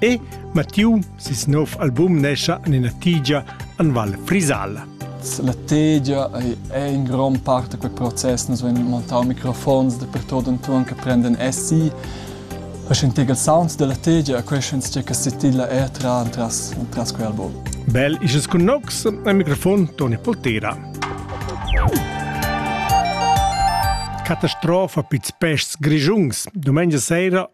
E Mattiu, ses nov album nescha en ina tigia en Val Frisala. La tegia ei en grond part da quei process. Nus vein montau microfons dapertut entuorn che prenden essi. E sentir il sound della tegia, quei schens che che setilla er tra entras entras quei album. Bel is cun nox, al microfon Toni Poltera. Catastrofa pizs peschs grigiungs, domenica sera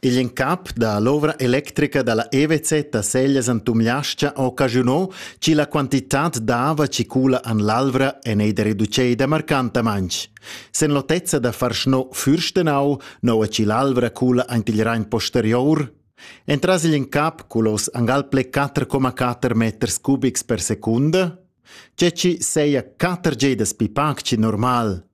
Igl incap dall'ovra electrica dalla EWC da Seglias en Tumliascha ha occasiunau che la quantitad d'ava che cula en l'Alvra en ei da reducei marcantamain. Sen l'otezza da far sno Fürstenau, noua che l'Alvra cula ant il Rhein posterior, entras igl incap culos angal ple 4,4 meters cubics per secunda, tge ci seia 4 gedas pi pac che normal.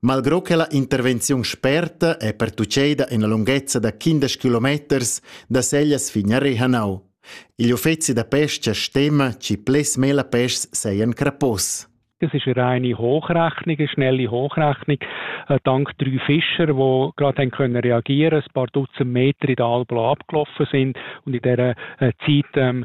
Malgro che la intervenziun sperta è pertuccada ina lunghezza da quindesch kilometers da Seglias fin a Rehanau. Igl uffeci da pesca stima che ples mela peschs seien crapos. Es ist eine reine Hochrechnung, eine schnelle Hochrechnung. Äh, dank drei Fischer, die gerade können reagieren ein paar Dutzend Meter in der Alplo abgelaufen sind und in dieser äh, Zeit ähm,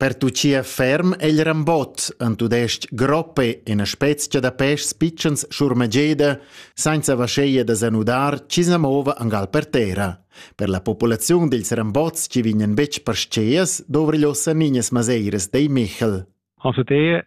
Pertuchia ferm egl rambot en tudestg groppe ina spezia da peschs pitschens schurmageda senza vascheia da zanudar chi sa mova angal per terra. Per la populaziun dils rambots chi vignan betg parscheas dovri l'ossa ninas maseiras dei Michel. Also der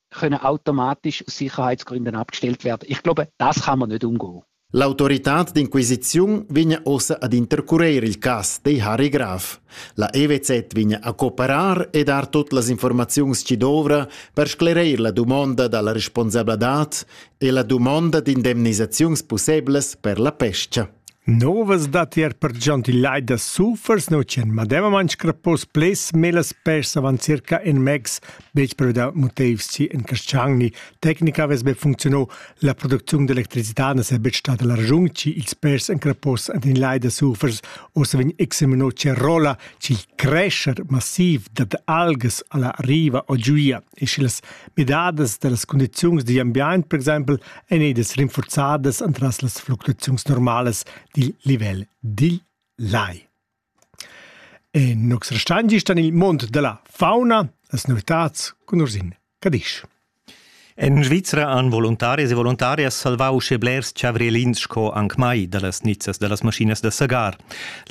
können automatisch Sicherheitsgründen abgestellt werden. Ich glaube, das kann man nicht umgehen. L'autoritad d'inquisiziun vegn ossa ad intercurer il cas, dei Harry Graf. La EWZ vegn a cooperar e dar tot las informaziuns ci dovra per sclereir la dumonda dalla responsabladad e la dumonda d'indemnisaziuns pusseblas per la pescia. Novas datti er pertgant il lai da sulfurs nautschan medemamain scrappos pleds melas pers avant circa in megs betg però da motivs ci en Casciagni. Tecnica avess be funcziunà, la producziun d'electricità na saja betg stada la ragiun ci ils pers en crappos ad in lai da sulfurs o se vegn examinò ce rola ci il crescer massiv dad algas alla riva o giuia. e sch'illas midadas da las cundiziuns digl ambient per exempel ein edas rinforzadas entras las fluctuaziuns normalas dil livel dil lai. E nux restandi stan il mond della fauna, las novitats cun ursin Cadisch. En Svizra han voluntarias e voluntarias salvau sche blers chavrielins sco anc mai dallas nizzas dallas maschinas da sagar.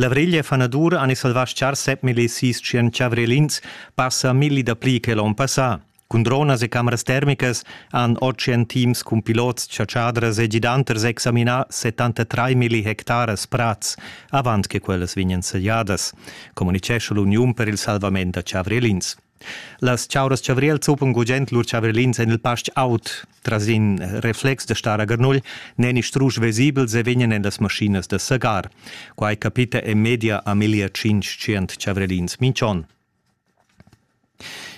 La vriglia fanadur han salvà schar 7.600 chavrielins passa milli dapli che l'onn passà. Cun dronas e cameras termicas han Ocean Teams cun pilots, chatschadras e gidanters examinà 73 milli hectaras prads avant che quellas vegnan sagliadas, communitgescha l'Uniun per il salvament da chavrelins. Las chauras chavriels zuppan gugent lur chavrilins en il pastg aut. Tras in reflex da star a Garnugl n'èni strusch vesibels e vegnan en las maschinas da sagar. Quai capita en media a meglier tschintg chavrelins minch'onn.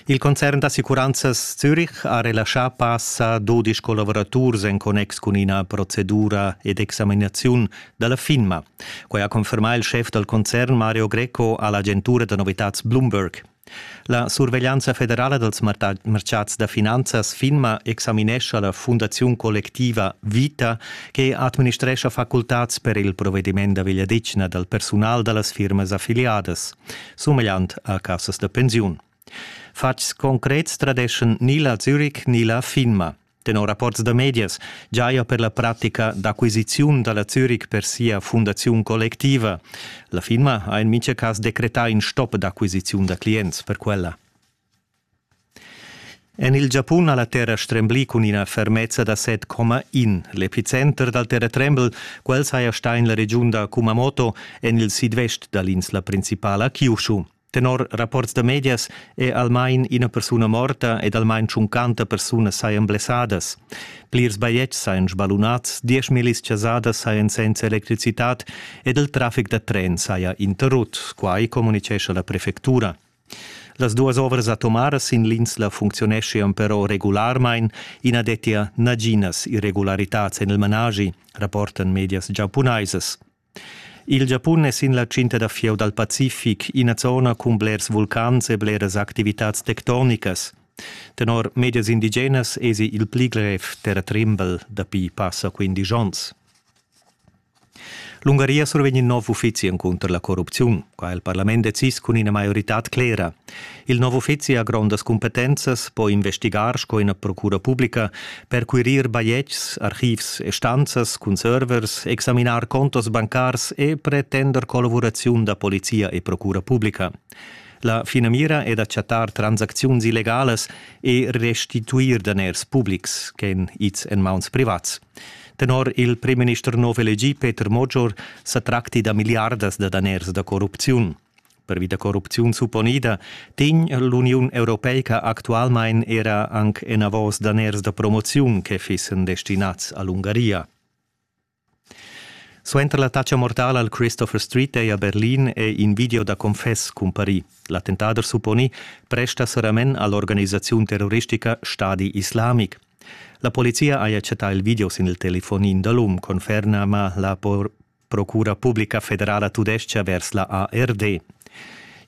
Il concern d'assicuranzas Zürich ha relaschà passa dudisch collavuraturs en connex cun ina procedura ed examinaziun da la FINMA. Quai ha confermà il schef dal concern Mario Greco a l'agentura da novitads Bloomberg. La surveglianza federala dals martgads da finanzas FINMA examinescha la fundaziun collectiva Vita che administrescha facultads per il provediment da vegliadetgna dal persunal da las firmas affiliadas, sumegliant a cassas da pensiun. Fatgs concrets tradeschan ni la Zürich ni la FINMA. Tenor rapports da medias giaja per la pratica d'acquisiziun da la Zürich per sia fundaziun collectiva. La firma ha en mintga cas decretà in stop d'acquisiziun da clients per quella. En il Giapun ha la terra stremblì cun ina fermezza da 7,1. L'epicenter dal terratrembel, quel saja stà en la regiun da Kumamoto, en il sidvest da l'insla principala Kyushu. Tenor rapports da medias è almain ina persuna morta ed almain tschuncanta persunas sajan blessadas. Plirs bajetgs sajan sbalunads, dieschmillis chasadas sajan senza electricitad ed il traffic da tren saja interrut, quai communitgescha la prefectura. Las duas ovras atomaras sin l'insla funcziuneschian però regularmain, i na dettia naginas irregularitads en il managi, rapportan medias giapunaisas. Il Giapun es in la tschinta da fieu dal Pacific, ina zona cun blers vulcans e bleras activitats tectonicas. Tenor medias indigenas esi il pli grev terratrembel dapi passa quindisch ons. L'Ungaria survegn in nov uffizi encunter la corrupziun. Qua ha il parlament decis cun ina maioritad clera. Il nov uffizi ha grondas cumpetenzas, po investigar sco ina procura publica, perquirir bajetgs, archivs e stanzas cun servers, examinar contos bancars e pretender collavuraziun da polizia e procura publica. La finamira è da chattar transacziuns illegalas e restituir daners publics ch'èn ids en mauns privats. Tenor il primminister nov elegì Peter Mogior sa tracti da milliardas da daners da corrupziun. Pervi da corrupziun supponida tegn l'Uniun europeica actualmain era anc enavos daners da promoziun che fissen destinads a l'Ungaria. Suenter l'attacca mortala al Christopher Street Day a Berlin è in video da confess cumparì. L'attentader supponì presta saramen all'organisaziun terroristica Stadi Islamic. La polizia ha accettà il video sin il telefonin da l'um, conferma ma la por Procura publica federala tudestga vers la ARD.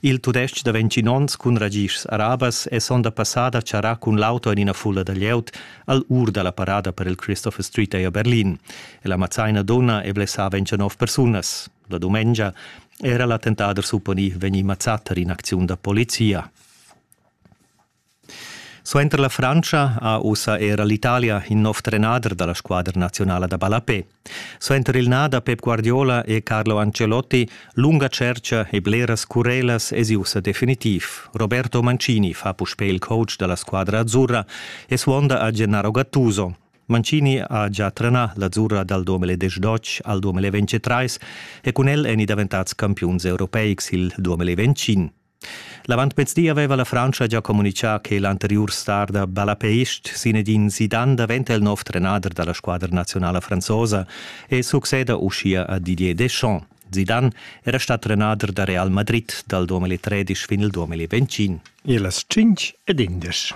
Il tudestg da 20 onns cun ragischs arabas è sonda passada charrà cun l'auto en ina fulla da glieud al ur da la parada per il Christopher Street a Berlin. E la mazzaina donna è blessava en 29 persunas. La dumengia era l'attentader supponì vegnì mazzà tar in'acziun da polizia. Suenter la Frantscha ha ussa era l'Italia in nov trenader dalla squadra nazionala da ballapé. Suenter il na da Pep Guardiola e Carlo Ancelotti lunga tscherca e bleras curelas es ussa definitiv. Roberto Mancini fa puspè il coach dalla squadra azzurra e suonda a Gennaro Gattuso. Mancini ha già trenà l'azzurra dal 2012 al 2023 e cun el èni daventads campiuns europeics il 2025. L'avantmezdi aveva la Frantscha gia communitgà che l'anteriur star da Balapeist Zinedine Zidane daventa il nov trenader da la squadra nazionala franzosa e succeda uschia a Didier Deschamps. Zidane era stà trenader da Real Madrid dal 2013 fin il 2021. E las 5 ed indesch.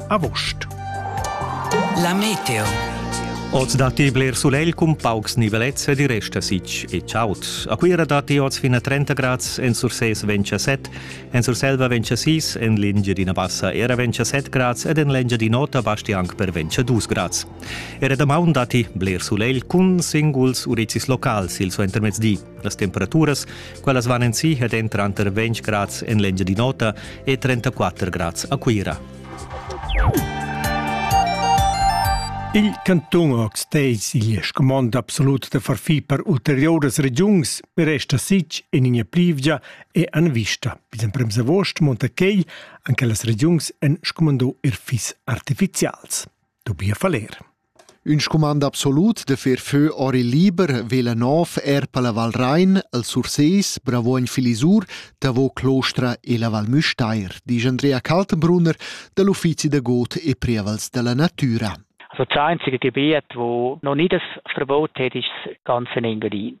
August. La meteo. Oz datti bler sulegl cun paucs nivelets ed i resta sich e chaud. A Cuira datti oz fin a 30 grads, en Surses vegn a 7, en Surselva vegn a 6, en l'Engiadina Bassa era vegn a 7 grads ed en l'Engiadin'Ota basti anc per vegn a 2 grads. Era damaun datti bler sulegl cun singuls urizis locals il suentermezdi. Las temperaturas, quellas van en si ed entran tranter 20 grads en l'Engiadin'Ota e 34 grads a Cuira. Il cantun Ortsteis igl scumond absolut da far fi per ulterioras regiuns per resta sich en ina plivgia e an vista. Bis en prems agost monta quei anche las regiuns en scumando er fis artificials. Dubia faler. Ün scumand absolut de fer fö or il liber vela nov er per la Val Rhein, el Sursees, Bravoin Filisur, Tavo Clostra e la Val Müstair, dice Andrea Kaltenbrunner dell'Uffizi de Got e Prievals della Natura. Also das einzige Gebiet, wo noch nie das Verbot hat, ist das ganze Engadin.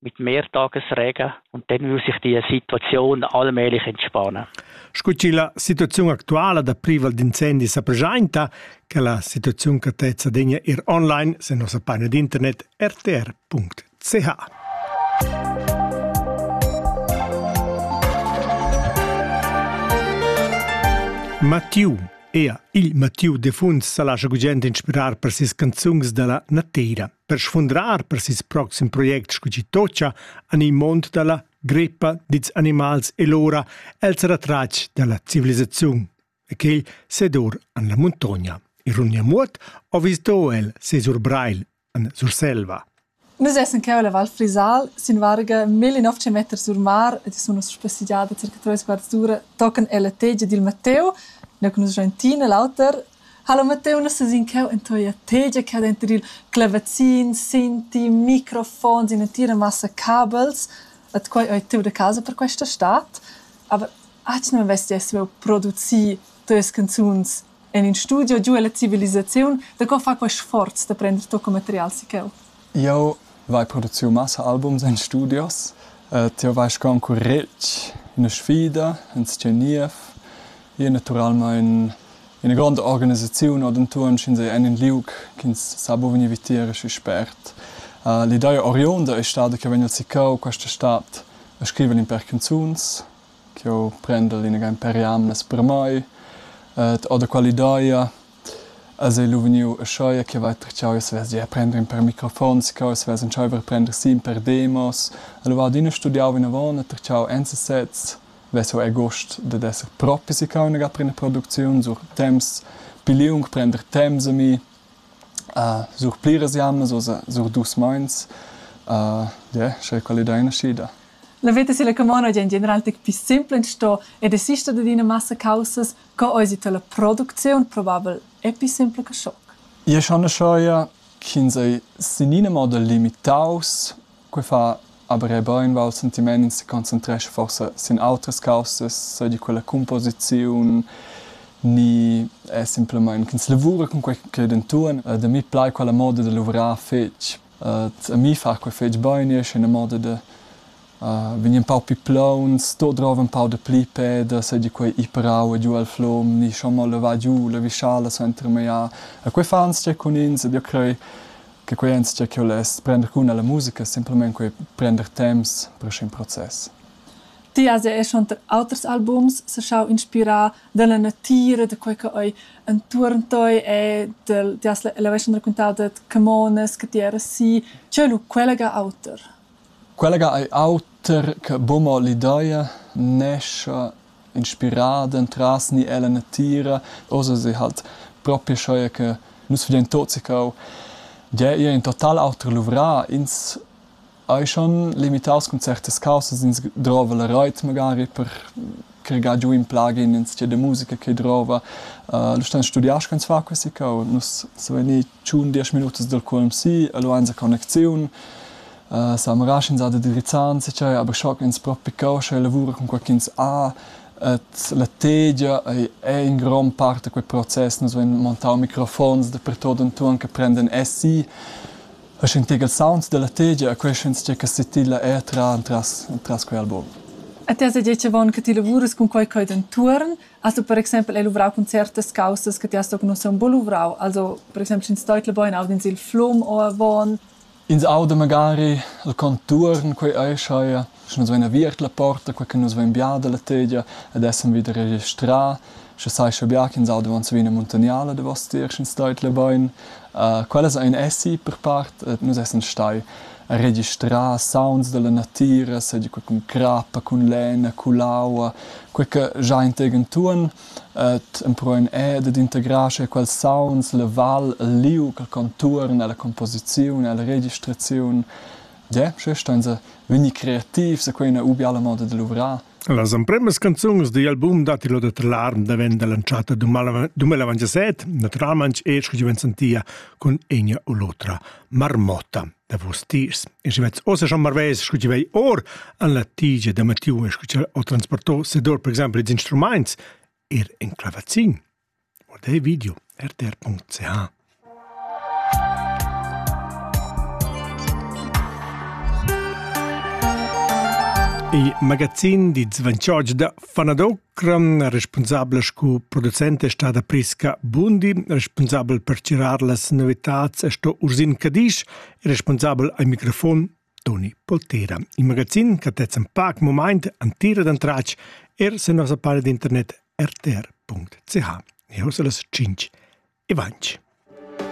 mit mehr Tagesregen und dann muss sich die Situation allmählich entspannen. Scu chi la situaziun actuala da privel d'incendi sa preschainta, che la situaziun catezza degna ir online se nossa paina d'internet rtr.ch. Mathieu Ea il Mathieu de Funs sa lascia gugent inspirar per ses canzuns da la nateira. Per sfundrar per ses proxim project sco chi tocca en il mond da la greppa dits animals e l'ora, el sarà tratg da la civilisaziun. E quel sedur en la muntogna. Ironia muot, o visdo el ses Urbreil en Surselva. Nus essen cheu la Val Frisal sin varga 1900 meter sur mar e sono spassigiada circa 3 quarts d'ura tochen ella tegia dil Matteo, ne conosce Gentina l'auter Halo Matteuna ses in cheu en toia tegia ch'ha denter il clavazin, sinti, microfons, in'entira massa cabels, et quei ei tut a casa per questa stad. Aber aunc non vess jeu saviu producir teis canzuns en in studio giu ella civilisaziun. Da co far quei sforz da prender tocco material si cheu? Jau vai produciu massa albums en studios. Tieu vais concurretg üna sfida in sta niev. Ir natüralmaing üna gronda organisaziun o d'intuorn sch'ins ei en ün liug ch'ins sa buca vegnir vitier aschi spert. L'idea oriunda ei stada ch'jeu vegn siccau quest'estat a scriver ün pèr canzuns ch'jeu prendel ina ga per jamnas per mai. Ed ho da quell'idea Els ei lu vegniu aschia che va tratschau e svesgia a prender in per microfons cheu e svess entscheiver a prender sin per demos. E lu va adina studiau vinavon e tratschau ensasez. Ves'jeu hai gust dad esser propi siccau inagà per ina producziun sur temps pli liung, prender temps a mi, sur pliras jammas o sur dus meins. Yeah, sche quella ei naschida. La veta silla camona gie en general tec pli simpla sto e desista dad ina massa caussas Co eisi tala producziun probabel epi sempla che schoc? Io schanascheia ch'ins ei senina moda limitaus. Quei fa aber era beinvart sentiment, ins seconcentrescha forsa sin autras caussas, seigi quella cumposiziun ni è semplamein ch'ins lavura cun quei ch'ei denton. Da mi plai quella moda da luvrar fetg. A mi fa quei fetg bein, io sche ina moda da vegn empau pli plauns, d'ordrar empau dapli pèdas e di quei iperau e giu el flom, ni schon mo levar giu la vischala suenter meiar. E quei fa anzia cun ins ed io crei che quei anzia che less prender cun alla musica, simplemente quei prender temps per sc'in process. Ti has er schon auters albums saschau inspirar dalla natira, da quei che ei entuorn tei e ti has la veschan raccontau dad Camonas che ti eras si. Co è lu quella ga auter? Quella ga ei auter che buca mo l'ideia nescha inspirada entras ni ella natira, ussa se halt propi aschia che nus vegnein tuts sicau gia ir in total auter luvrà. Ins ei schon limitaus cun certas caussas, ins drova la reit magari per che ga giu in plugin in stia de musica che drova. Uh, lu stan studiar sch'ins fa quesica u nus so veni tschun diesch minutas dal QMC, lu ein connecziun. Uh, sa marasch ins ha de drizzan se cai, aber schock ins propi causcha e lavura con qualchins a et la tegia ei, è in gran parte quel process, nus vein montau microfons da pertot entuon che prenden SI E sentir ils sounds dalla tegia e quei sch'enzatgei che setilla era tra entras, entras quei album. E ti has detg avon che ti lavurs cun quei cheu d'entuorn, has du per exempel hai luvrau cun certas causas che ti has tochen ussa un po luvrau, also per exempel sch'ins deutla bein aud'ins il flum o avon. Ins auda magari il contuorn, quei ei schai sche nus vein aviert la porta, quei che nus vein bia dalla tegia ed essan vida registrà, sche sai sche bia ch'ins auda davon savina muntaniala davos tier, sch'ins stait la bein. Uh, quellas ein essi per part, et nus essan stai registrà sounds dalla natira, seigi quei cun crappa, cun lena, cun l'aua, quei che già integen tuon, et empruein e dad integrar sche quels sounds, la val, il liug, il contuorn, la composiziun, la registraziun, Yeah, sche stan se vegni creativs e quei ina ubiala moda de luvrar. Las empremas canzuns digl album datti lo da Trlarm davent lanciata duemila avantasset, naturalment e scu giuven sentia cun egna u l'otra marmotta da vos tiers. E si vets ossa schon marves scu ti vei or an la tigia da Mattiu e scu ti ho transportò sedor per exempel ed instrumaints er in clavazin. Guardei video rtr.ch Il magazin di Zvančoč da Fanadokram, responsabel sco producent è stata Priska Bundi, responsabel per chirar las novitats è sto Ursin Cadisch e responsabel al microfon Toni Poltera. In magazin che tez in pac moment an tira d'antratg er se nossa pare d'internet rtr.ch. E ho las 5 e 20.